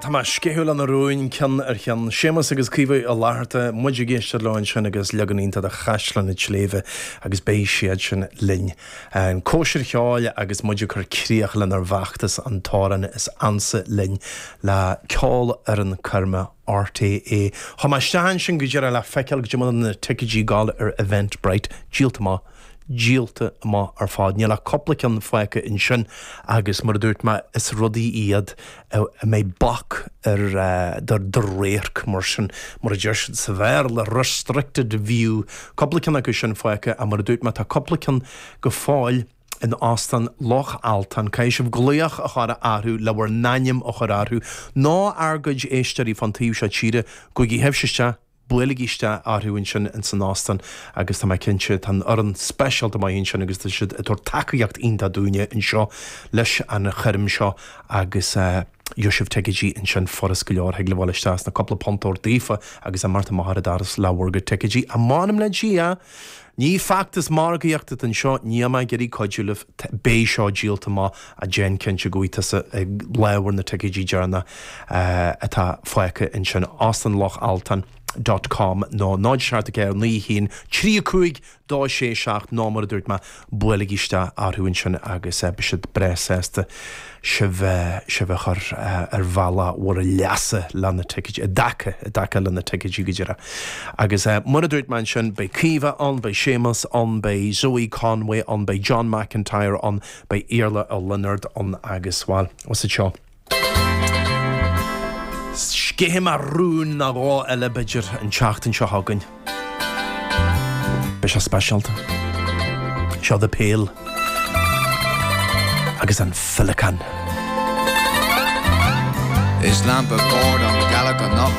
Tá mé ag sceitheadh leis na rúin, ceann ar cheann. Séamus agus Caoimhe Uí Fhlatharta, muid ag éisteacht leo ansin agus leagan iontach de Chaisleán an tSléibhe agus beidh siad sin linn ag an chóisir cheoil agus muid ag cur críoch lenár bhfeachtas An tAmhrán is Ansa Linn le Ceolfhoireann Coirme RTÉ, chuaigh mé isteach ansin go díreach le feiceáil cad é mar atá na ticeidí ag gabháil ar Eventbrite, díolta amach, díolta amach ar fad. Níl ach cúpla ceann fágtha ansin agus mar a dúirt mé, is rudaí iad a mbeidh bac ar do radharc mar sin. Mar a deir siad sa Bhéarla, restricted view. Cúpla ceann acu sin fágtha ach mar a dúirt mé, tá cúpla ceann go fóill. in Óstán Loch Altan, caithfidh sibh glaoch a chur orthu le bhur n-ainm a chur orthu. Nó ár gcuid éisteoirí fán taobh seo tíre, gabhaigí sibhse isteach, buailigí isteach orthu ansin in san Óstán agus tá mé cinnte, tá an fhoireann speisialta maith ansin agus tá siad ag tabhairt tacaíocht iontach dúinne anseo leis an choirm seo agus gheobhaidh sibh ticeidí ansin furas go leor, thig libh ghabháil isteach is na cúpla punt a thabhairt daofa agus imeacht amach ar an doras le bhur gcuid ticeidí, a m'anam le Dia! Ní feachtas margaíochta atá anseo, níl mé ach ag iarraidh cuidiú libh, beidh seo díolta amach, déan cinnte go bhfaighidh tusa do lámh ar na ticeidí deireanacha a atá fágtha ansin Óstán Loch Altan dot com nó 074 91 35 267 nó mar a dúirt mé buailigí isteach orthu ansin agus beidh siad breá sásta sibh sibh a chur ar bhealach bhur leasa leis na ticéid, i dtaca, i dtaca leis na ticéidí go díreach. Agus mar a dúirt mé ansin, beidh Caoimhe ann, beidh Séamus ann, beidh Zoe Conway ann, beidh John McIntyre ann, beidh Iarla Ó Lionáird ann agus, bhuel, is iad seo. Sceithfidh mé rún nó dhó eile, b'fhéidir, an tseachtain seo chugainn. Beidh sé speisialta. Seo The Pale agus an Féileacán. Is lampa boird an ghealach anocht.